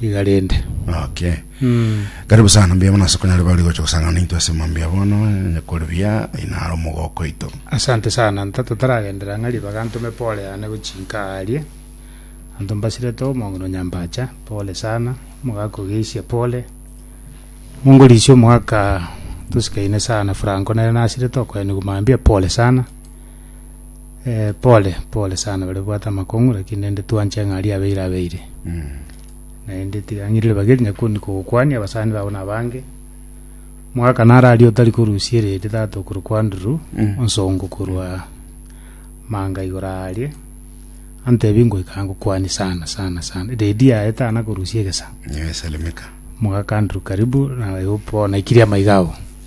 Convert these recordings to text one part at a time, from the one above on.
iga rende. Okay. Karibu sana mbuya mono ase konyare bari gocha gosangana naintwe ase mambia ya bono onye kore buya aina are omogoko oito. Asante sana nta totaragendera ng'a ribaga ntome pole yane gochinka aa aria anto mbasirete omong'ina Nyambacha pole sana omogaka ogeisia pole mongorisia omogaka tosikaine sana Franco nere nasirete okoenigwa mambia pole sana eh, pole pole sana bare bwate amakong'u lakini naende twanche ng'a aria abeire abeire naende tiga ng'irire bageri nyakoni kogokwania abasani babo na abange mwaka naro aria otari korusia ereri tata okorwa kwa nduru Mm. onsongo korwa manga igoro aria antebi ngoika ngokwania sana sana sana redi yaye tana korusia egesa Niwe Salimika. mwaka nduru karibu na igo bono ikiria amaiga abo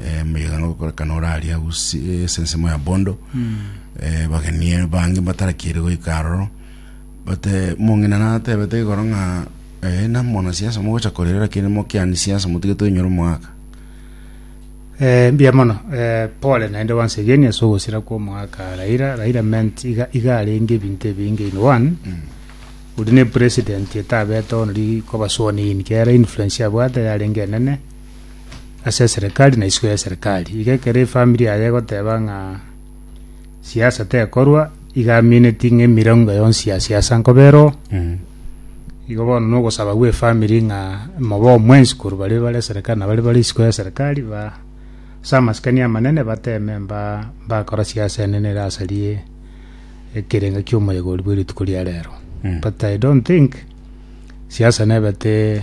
eh, moyega nogokorekana oraria usi eh, esensemo ya bondo eh, bageni bange batarakire goika aroro bate mong'ina natebete igoro ng'a eh, namona siasa mogocha korera lakini mokiani siasa motige toinyore omwaka Eh, mbuya mono eh, pole naende once again ase ogosira kwa omwaka raira raira meant iga iga arenge ebinto ebinge in one ori ne president etabete onori kobasuoni in kera influence yabwate yarenge enene as'eserekari na isiko y'eserekari. Iga ekero efamiri yaye egoteba ng'a siasa tekorwa, iga amineti ng'a emirengo yonsi ya siasa nkoba ero, igo bono na ogosaba gw'efamiri ng'a mobe omwensi korwa baria bare eserekari na baria bare isiko y'eserekari ba as'amasikani amanene bateme mba mbakora siasa enene ere asaria ekerengo ki'omoyega oria bwe rituko ria rero. But I don't think siasa nebete.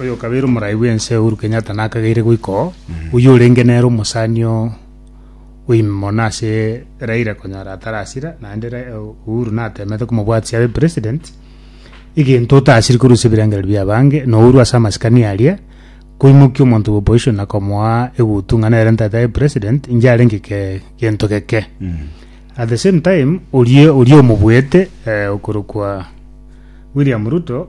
oyokabere omorai bw'ense Uhuru Kenyatta nakageire goika oo, oyio orenge nere omosani oo oime mono ase Raila konyora atarasira naende Ra- eh, Uhuru natemete komobwatisia abe president egento otasiri korwa ase ebirengererio bia abange na Uhuru ase amasikani aria koimokia omonto bwa opposition na komoa egutu ng'a nere ntaete abe president inche arenge eke- gento geke at the same time orie oria omobuete eh, okorokwa William Ruto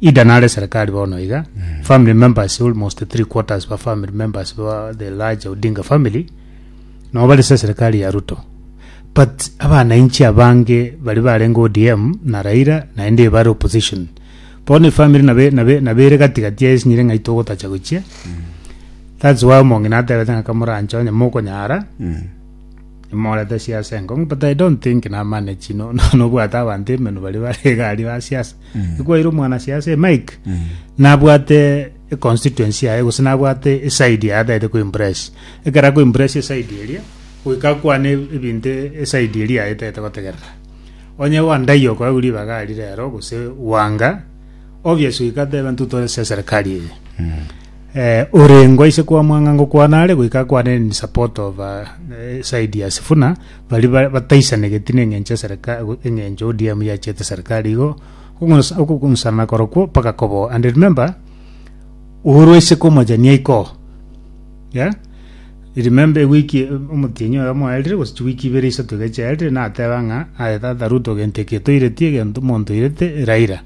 Ida nare serikali bono iga family members almost three quarters ba family members ba the large Odinga family nabo bari se serikali ya Ruto but abananchi abange bari barenge ODM na Raila naende bari opposition bono efamily nabe nabe nabere gati gati ya esinyire ng'ai togotacha gochia that's why omong'ina atebete ng'a kamoranche onye mokonyara imorete siasa enkong'u but I don't think namanage no no nobwate abanto emenwa bari bare egari ba siasa ekwaire omwanasiasa e Mike nabwate econstituency yaye gose nabwate eside yaye ataete koimpress ekero akoimpress eside eria goika akwane ebinto eside eria yaye etaete gotegerera onye Wandayi okoegwa ribaga aria rero gose Wanga obvious goika atebe intwe tore ase eserikari eye eh, orengo aise kwamwanga ngokwana are goika akwane in support of uh, side ya Sifuna baria bataisanegeti nengencho eserikari engencho ODM yachete serikari igo okogonsana korokwo mpaka koboa and remember Uhuru aise komojania iko yeah remember ewiki omotienyi oyo mwaerire gose chiwiki ibere isato iga chiaerire nateba ng'a aye tata Ruto gento eki toireti egento monto oirete Raila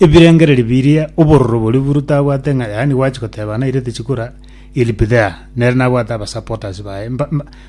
ebirengereri biria obororo boria Uhuru tabwate ng'a yaani gwachi goteba nairete chikura he'll be there nere nabwate abasupporters baye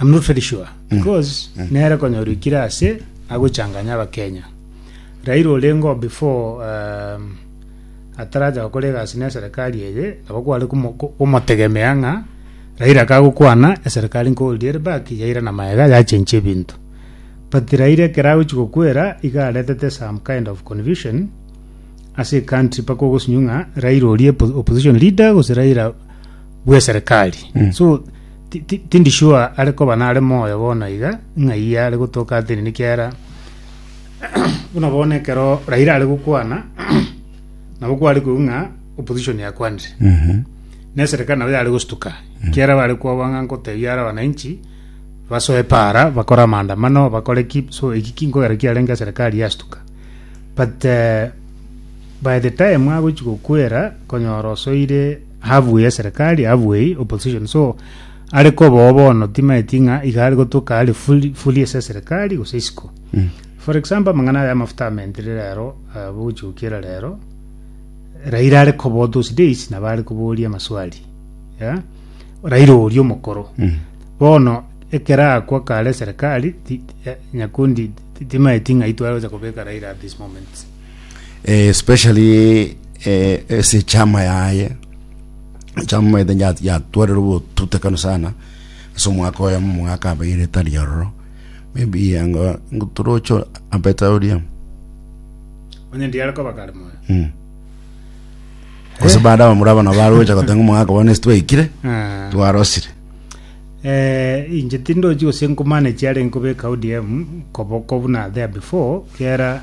I'm not very sure because nere konyorikire ase agochanganya abakenya Raila orengo before um, ataraja gokora egasi na eserikali eye nabo kware komo- ko- komotegemea ng'a Raila kagokwana eserikali nkoldire back yaira na maega yachenche ebinto but Raila ekero agochi gokwera iga aretete some kind of confusion ase ecountry paka ogosinyu ng'a Raila orie po- opposition leader gose Raila bw'eserikali so Ti- ti- Tindi sure are koba nare moyo bono iga, ng'ai are gotoka atini nekiagera buna bono ekero Raila are gokwana nabo kware koigwa ng'a opposition yakwanire na eserikali nabo yare gostuka ekiagera bare kwaba ng'a nkotebia are abananchi basoe para bakore amaandamano bakore ki so eki ki nkogera kiarenge eserikali yastuka but eh, by the time agochi gokwera konyora osoire Ahabue eserekari, ahabue eye, opposition, so are kobao bono timaeti ng'a iga are gotuka are fully, fully ase eserekari gose isiko. For example, amang'ana aya amafuta amentire rero, eh, bogochigokiera rero, Raila are kobao those days nabo are koboria amaswali. Yeah? Raila oria omokoro. Bono ekero akwa kare eserekari, ti- ti- eh, Nyakundi ti- timaeti ng'a itware gocha kobeka Raila at this moment. eh, especially eh, ase chama yaye chama maete ya- yatwarire obotutekano sana ase omwaka oyo omwaka abeire etari ororo maybe anga ngotorocho abeta oria onye ndiare koba kare moyo mm. gose baada bamura abana barocha gotenga omwaka bono ase twaikire Ah. twarosire Eh, inche tindochi gose nkomanage are nkobeka odm koboko buna there before kera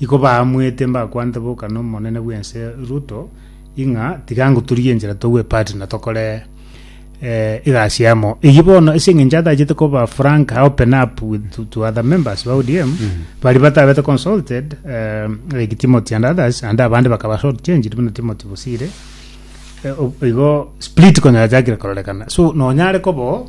Iko baamwete mbakwanete boka nomonene bw'ense Ruto, ing'a tiga ngoturie enchera togwe part na tokore eh, egasi amo. Eyio bono ase eng'encho atachete koba frank open up with to, to other members ba ODM bari batabete consulted eh, like Timothy and others and abande bakaba short changed buna Timothy Bosire Eh, o- igo split konya yachakire kororekana so nonyare kobo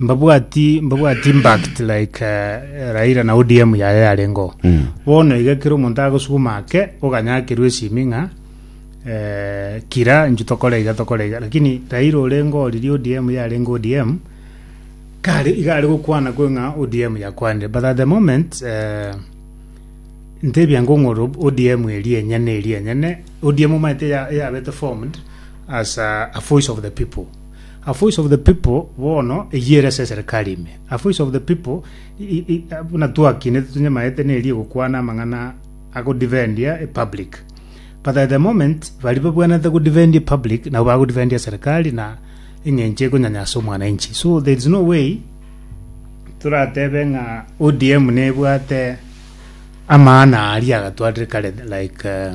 Mbabwati mbabwati impact like eh, Raila na ODM yaye yarengo. Mm. Bono iga kero omonto agosuguma ake oganyakerwa esimi ng'a eh, kira inchu tokore iga tokore iga lakini Raila orengo oriri ODM yarengo ODM kare iga are gokwana kwe ng'a ODM yakwanire but at the moment eh, ntebia ngong'oro ODM eri enyene eri enyene ODM omaete ya- yabete formed as a, a voice of the people A voice of the people bono eyio ere ase eserekari ime. A voice of the people i- i- i- a- buna twakinete tonyamaete neri egokwana amang'ana agodefendia epublic. But at the moment baria babwenerete godefendia epublic nabo bagodefendia eserekari na eng'encho ekonyanyasa omwananchi. So there is no way toratebe ng'a ODM nebwate amaana aria agatwarire kare like eh,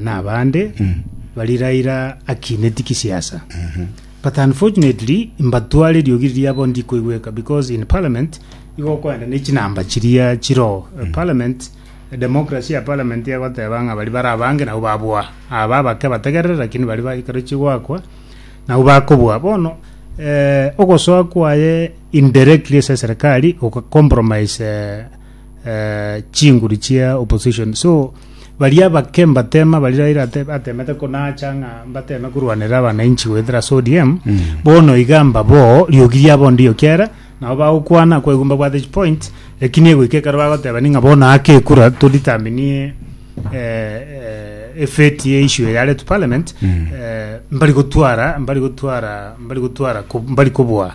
nabande baria Raila akinetie gisiasa but unfortunately mbatware eriogi riria bono rikoigweka because in parliament igo okoenda ne chinamba chiria chiroo parliament democracy ya parliament egoteba ng'a baria bare abange nabwo baboa aba abake bategerere lakini baria ba ekero chigoakwa nabwo bakoboa bono ogosoa kwaye indirectly ase eserekari oga compromise eh, chinguru chia opposition so baria abake mbatema bari raira ate- atemete konacha ng'a mbateme korwanera abananchi goetera ase odm bono iga mbabo riogi riabo ndio kiara nabo bagokwana kwaigwa mbabwate chipoint ekini egoika ekero bagoteba ning'a bono ake ekura toditaminie eh, eh, efeti ya issue yaretwe parliament eh, mbari gotwara mbari gotwara mbari gotwara ko- mbari kobua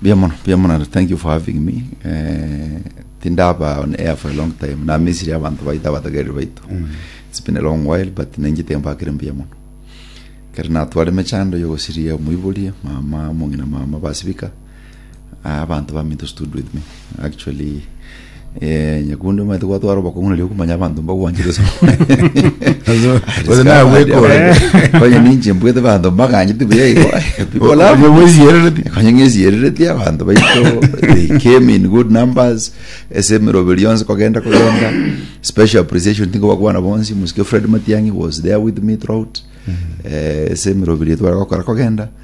Mbuya mono, mbuya mono and thank you for having me. Eh, tindaba on air for a long time. Namisiri abantu baito abatagereri baito. It's been a long while but nenjete mbakire mbuya mono. Kare natware mechando yo gosiria omoibori, mama, omong'ina mama basibika. Ah, abantu baminto stood with me. Actually Eh, nyakundi omanyete gwatwara obokong'u nario okomanya abanto mbagwanchire ase Gose nawe bwekore. konye ninche mbwete abanto mbaganyete buya igo people love Onye me. bwesierereti. konye ng'esierereti abanto baito they came in good numbers ase emeroberi yonsi kogenda kogenda special appreciation tingobakwana bonsi mosike fred matiang'i was there with me throughout Eh, ase emeroberi etware gokora kogenda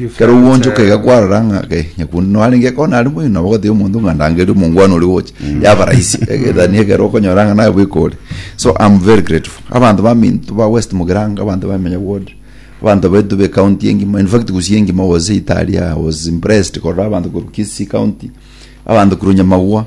Ekero ogwoonchoka iga kwarora ng'a kai, nyakundi noyo arenge ekoo nare moino, nabo ogatebia omonto ng'a ndangerie omongwana oria ogocha, yaba rahisi eh, than ekero okonyora ng'a naye bweka ore. So am very grateful. Abanto baminto ba West Mugirango, abanto ba Emenya ward, abanto baito be county engima, in fact Gusii engima was italia, I was impressed korora abanto korwa Kisii county, abanto korwa Nyamagwa,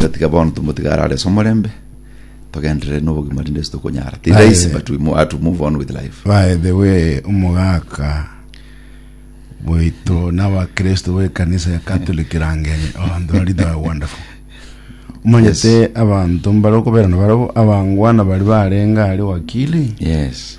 Gatiga bono tomotige arare ase omorembe, togenderere nobogima rinde ase tokonyara. Ti Aye. rahisi but we mo- have to move on with life. by the way omogaka bwaito n'abakristo b'ekanisa ya catholic rangeni oh ndori they are wonderful omanyete abanto mbare okobera na barabo abangwana bari barenga aria wakili Yes.